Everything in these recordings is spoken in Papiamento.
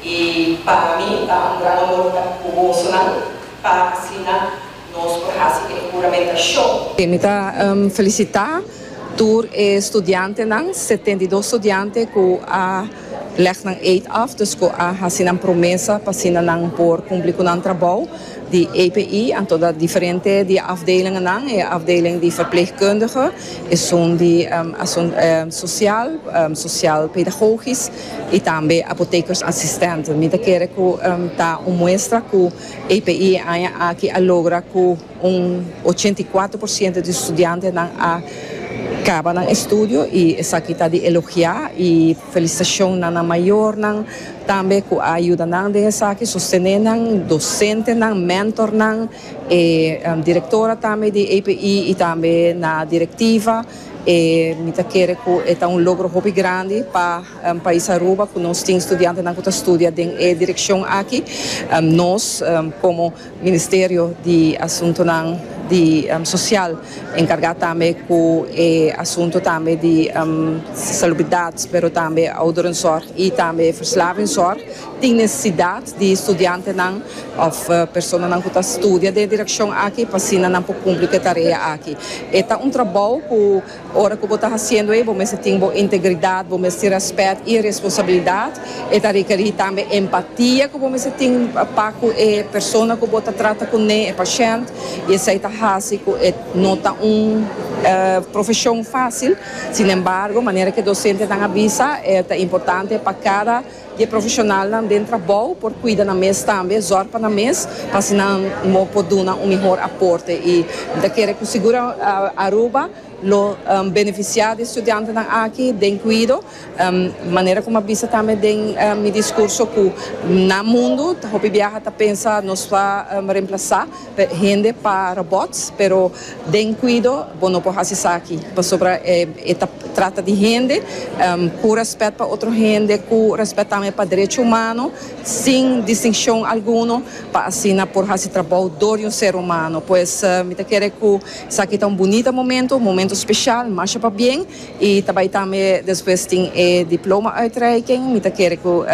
I pa mi ta un gran honor ta ku bosonan pa asina nos por hasi e huramentashon. Mi ta felisitá tur e studiantenan, setenta i dos studiante ku a lèg nan eet af, dus ku a hasi nan promesa pa asina nan por kumpli ku nan trabou di APE. Anto da diferente di e afdelingennan, e afdeling di verpleegkundige, esun di asunt sosial, sosial pedagogis, y tambe apotekers asistente. Mi ta kere cu ta un muestra cu APE e aña aki a logra cu un ochenta y cuatro por ciento di studiantenan a caba nan estudio y esaki ta di elogia y felicitacion na nan mayornan tambe cu a yuda nan den esaki, sostene nan, docentenan, mentornan, e directora tambe di APE y tambe na directiva. E mi ta kere ku e ta un logro hopi grandi pa pais Aruba ku nos tin studiantenan ku ta studia den e direkshon aki. Nos komo Ministerio di Asuntonan di Sosial enkargá tambe ku e asunto tambe di salubridat, pero tambe ouderenzorg i tambe verslavingzorg. Tin nesesidat di studiantenan òf personanan ku ta studia den e direkshon aki pa asina nan por kumpli ku e tarea aki. E ta un trabou ku ora ku bo ta hasiendo e bo mester tin bo integridat, bo mester tin rèspèt i e responsabilidat. E ta rekerí tambe empatia ku bo mester tin pa ku e persona ku bo ta trata kuné, e pashènt, i esei ta hasi ku e no ta un profeshon fásil. Sinembargo, manera ku e dosentenan a bisa, e ta importante pa kada. di e profeshonalnan den trabou por kuida nan mes tambe, zòr pa nan mes, pa así nan mo por duna un mihor aporte. I mi ta kere ku sigur Aruba lo benefisiá di e studiantenan aki den kuido, manera ku mi a bisa tambe den mi diskurso ku nan mundu hopi biaha ta pensa nos ta remplasá, Hende pa robots pero den cuido bo no por haci esaki pasobra e ta trata di hende cu respet pa otro hende cu respet tambe pa derecho humano sin distincion alguno pa asina por haci trabao door di un ser humano pues mi ta kere cu esaki ta un bunita momento un momento special masha pa bien y ta bay tambe despues tin e diploma uitreiking mi ta kere cu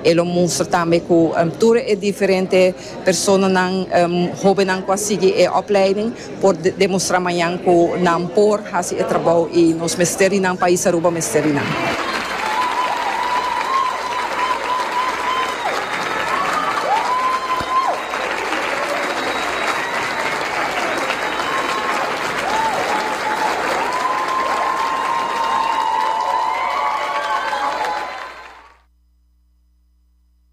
e lo mustra tambe cu tur e diferente. Personanan, hobennan ku a sigui e opleiding por demostrá mañan ku nan por hasi e trabou i nos mester di nan, pais Aruba mester di nan.